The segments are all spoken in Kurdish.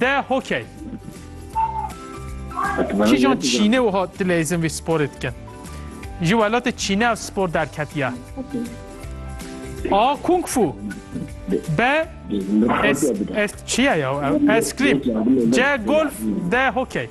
Te hokey. Kîjan Çînê wiha dilê izin vî sporê dikin? Ji welatê Çînê ev spor derketiye. A. Kung Fu B. Es, es, çiye ya? Eskrîm C. Golf D. Hokey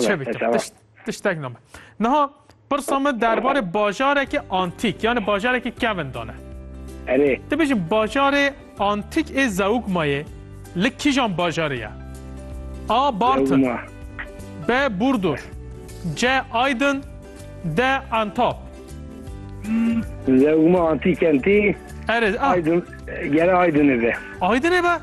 Çi bikim? Tiştek name. Niha pirsa min derbarê bajarekî antîk yanî bajarekî kevin dane. Erê. Ti bijî bajarê antîk ê Zewigmayê li kîjan bajarê ye? A. Bartin B. Burdur C. Aydin D. Antap Zewigma antîk entî Erê Aydin gere Aydinê be. Aydinê be?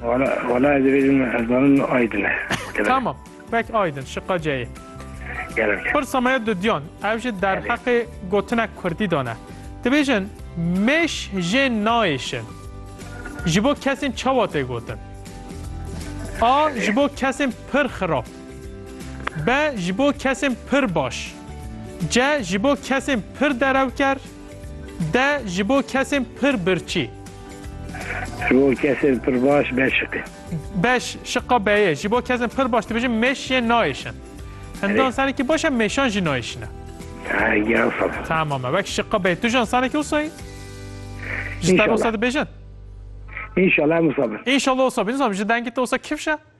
Wala, wala ez dibêjim ez zanim aydin e. Tamam, pek aydin, şiqa ceyê. Gerek. Pirsa me dudyan, ev jî derheqê gotinek kurdî de ne. Dibêjin mêş jê nayêşin. Ji bo kesên çawa tê gotin? A. Ji bo kesên pir xirab. B. Ji bo kesên pir baş. C. Ji bo kesên pir derewker. D ji bo kesên pir birçî. Ji bo kesên pir baş be şik e. Be şiqa be ye. Ji bo kesên pir baş dibêjin mêş yê nayêşin. Hindan Erê. sanekî baş e mêşan jî nayêşine. Ha ya sala. Tamam e. Wek şiqa be. Tu jan sanekî wisa yî? Ji te İnşallah. wisa dibêjin? İnşallah Musa bin. İnşallah wisa bin. Nizam ji dengê te wisa kifş e?